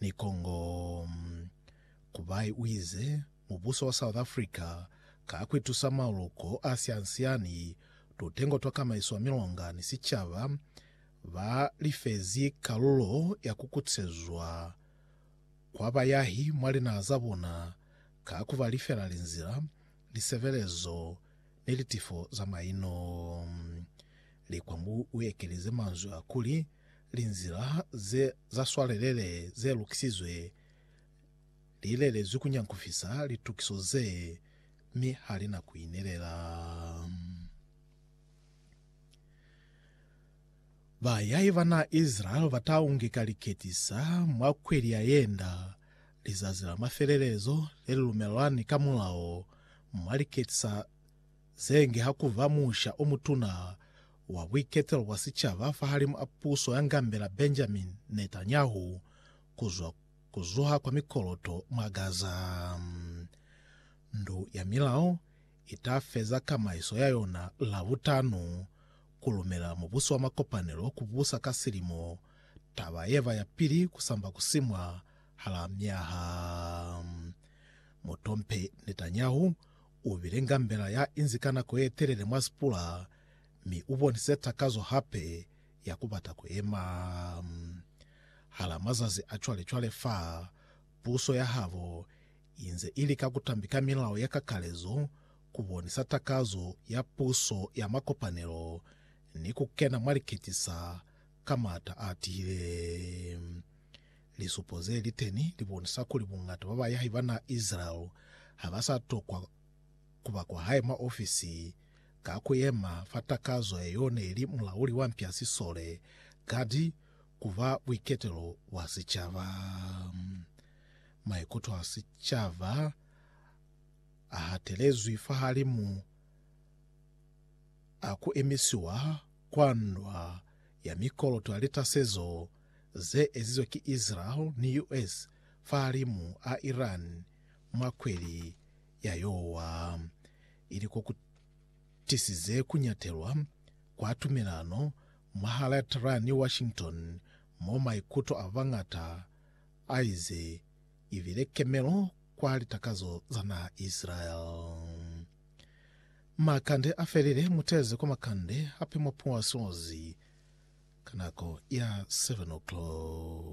Ni kongo Kubai uize, Mubuso wa South Africa ka kuitusa maluko a siansiani, tutengo twa kamaiso ya milonga ni sicaba ba lifezi kalulo ya kukutisezwa kwa bayahi mwa linaha za bona ka kuba lifela linzila, lisebelezo ni litifo za maino. Likwa Mbu uekelize manzwi a kuli, linzila ze za swalelele ze lukisizwe li lelezwi ku nyankufisa litukiso ze, mi ha li na ku inelela. Bayai ba na Isilaele ba ta ungeka liketisa mwa kweli ya yenda, lizazi la mafelelezo le li lumelwani ka mulao mwa liketisa Ze nge ha ku ba musha o mutuna wa buiketelo bwa sicaba fahalimu a puso ya ngambela Benjamin Netanyahu ku zwa ku zuha kwa mikoloto mwa Gaza. Ndu ya Milao i ta feza kamaiso ya yona Labutanu, ku lumela Mubuso wa Makopanelo ku busa ka silimo, taba ye ba ya pili ku samba ku simwa hala myaha. Mutompe Netanyahu U bile ngambela ya inzi ka nako ye telele mwa sipula mi u bonise takazo hape ya ku bata ku yema. Hala mazazi a cwale-cwale fa puso ya habo i nze i lika ku tambika milao ya kakalezo, ku bonisa takazo ya puso ya makopanelo ni ku kena mwa liketisa ka m'ata a tihile. Lisupo ze li teni li bonisa kuli bungata ba bayahi ba naha Israel ha ba sa tokwa ku ba kwa hae mwa ofisi ka ku yema fa takazo ye y'o ne li mulauli wa mpya sisole, kadi ku ba buiketelo bwa sicaba. Maikuto a sicaba a hatelezwi fahalimu a ku emisiwa kwa ndwa ya mikoloto ya litasezo ze ezizwe ki Israel ni US fahalimu a Iran mwa kweli ya yowa, ili ko ku tisize ku nyatelwa kwa tumelano mwahal'a Tehran ni Washington mo maikuto a bañata a ize i bile kemelo kwa litakazo za naha Israel. Makande a felile, mu teze kwa makande hape mwa puasozi ka nako ya 7 o'clock.